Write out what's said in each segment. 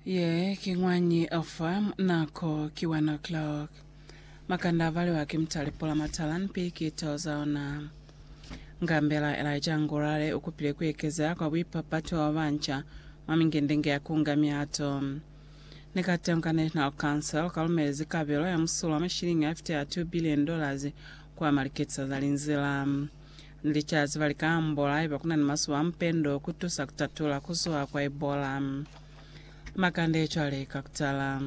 Ye ki ñwañi ofa nako ki one o'clock. Makanda avaliwa ki mutali pula matala ni pikito za ona. Ngambela Elijah Ngurare ukupile kuekezea kwa buipapatu bwa banca mwa mingindingi ya kunga miato. Ni kateñi ka National Council ukalumelezi kabelo ya musulo wa mashilingi afita ya 2 billion dollars kwa maliketisa za linzila. Ni licazi ba lika ambola haiba kuna ni masuba a mupendo ku tusa ku tatula ku zuha kwa Ebola. Makande cwale ka kutala.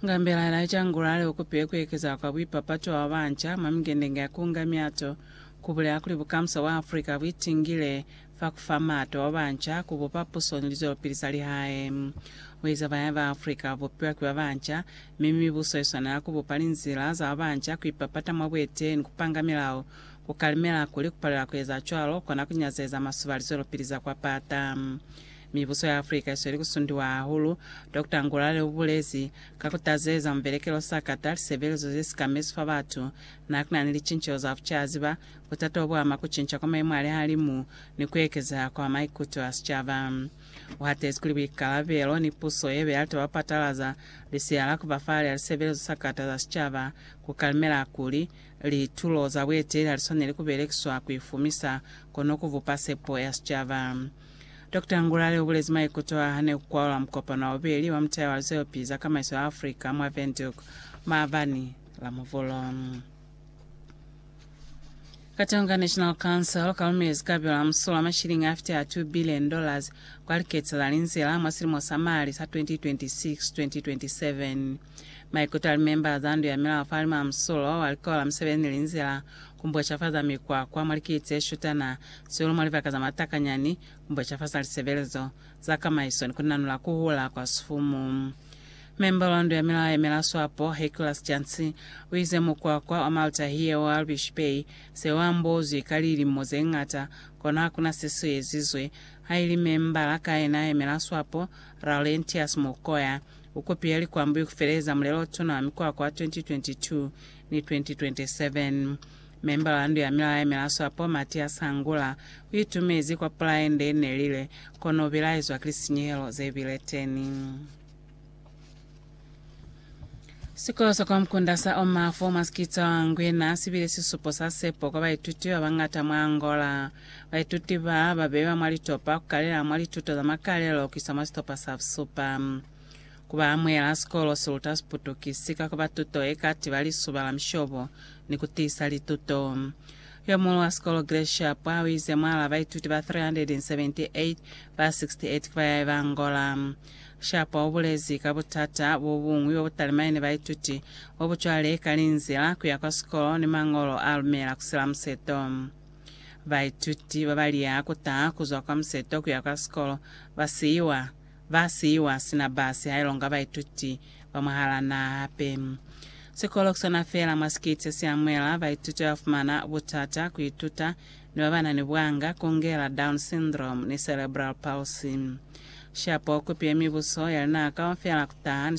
Nga mbelaela ye cangula hali u kupile ku ekeza kwa buipapatu bwa babanca mwa mingendenge ya ku unga miato, ku bulela kuli bukamusa bwa Africa bu itingile fa ku fa mato ba banca ku bupa puso ni lizwelopili za lihae. Ku eza bahae ba Afrika ba bupiwa ki ba banca, mi mibuso i swanela ku bupa linzila za ba banca ku ipapata mwa buetee ni ku panga milao, ku kalimela kuli ku palela ku eza cwalo kona ku nyazeza masuba a lizwelopili za kwa pata. Mibuso ya Afrika i sweli ku sundiwa hahulu, Doctor Ngulale u bulezi. Ka ku tazeza mubelekelo o sakata, lisebelezo ze si ka mesu fa batu, n'a ku na ni licinceho za bucaziba, Butata obu ama kucinca kwa mayemo a lihalimu ni kuekeza kwa maikuto a sicaba. Uhatezi kuli buikalabelo ni puso yebe ya litaba kupatalaza Lisea la Kubafala lya Lisebelezo sa Kata za Sicaba kukalimela kuli, litulo za bueteli haliswaneli kubelekiswa kuifumisa, kono kubupa sepo ya sicaba. Dokota Ngulale ubulezi maikuto aa hane kukwalula mukopano wa bubeli wa mutaya wa lizoyopi za kamaiso ya Africa mwa Windhoek maabani la Muvhulu. Katonga National Council kalumezi kabelo la musulo wa mashilingi afiti a 2 billion dollars kwa likete la linzila mwa silimo sa mali sa 2026-2027. Maikuto a limemba za ndu ya milao fa lima musulo wa likolo la misebeli ni linzila ku mbocafaza mikwakwa mwa likii tse shutana, sihulu mwa libaka za matakanyani, ku mbocafaza lisebelezo za kamaiso ni ku nanula ku hula kwa sifumu. Memba wa ndu ya milao ya Milaswapo, Heclas Jancy, uize mukwakwa wa Malta hiye wa Albish Bay se u ambozwi ka lilimo ze ñata, kono hakuna se si ezizwe. Haili memba la kaena ya Milaswapo, Laurentius Mukoya, u kopile likwambuyu ku feleza Mulelo-tuna wa Mikwakwa wa 2022 ni 2027. Memba wa ndu ya milao ya Milaswapo, Mathias Hangula, u itumezi kwa pulaye nde nelile, kono u bilaezwa ki lisinyehelo ze bile teni. Sikolo sa kwa Mkunda sa oma fo mwa Skitsa wa Ngwena si bile sisupo sa sepo kwa baituti ba bañata mwa Angola. Baituti ba ba beiwa mwa litopa ku kalela mwa lituto za makalelo ku isa mwa sitopa sa busupa. Ku ba amuhela, sikolo si luta Siputukisi ka ku ba tuto ye ka tiba lisuba la mishobo ni ku tiisa lituto. Yo muñwi wa sikolo Gracia Pwa u ize mwal'a baituti ba 378, ba 68 ki ba yaiba Angola. Sharpe u bulezi ka butata bo buñwi bo bu talimani ni baituti, bo bu cwale ka linzila ku ya kwa sikolo ni mañolo a lumela ku sila museto. Baituti ba ba liha ku taha ku zwa kwa museto ku ya kwa sikolo ba siiwa ba siiwa sina basi ha ilonga baituti ba mwahal'a naha hape. Sikolo ki sona feela mwa sikiti se si amuhela baituti ba ba fumana butata ku ituta ni ba ba na ni bwanga, kungela Down syndrome ni cerebral palsy. Shapo kupi ye mibuso ya luna kaufela kutaha ni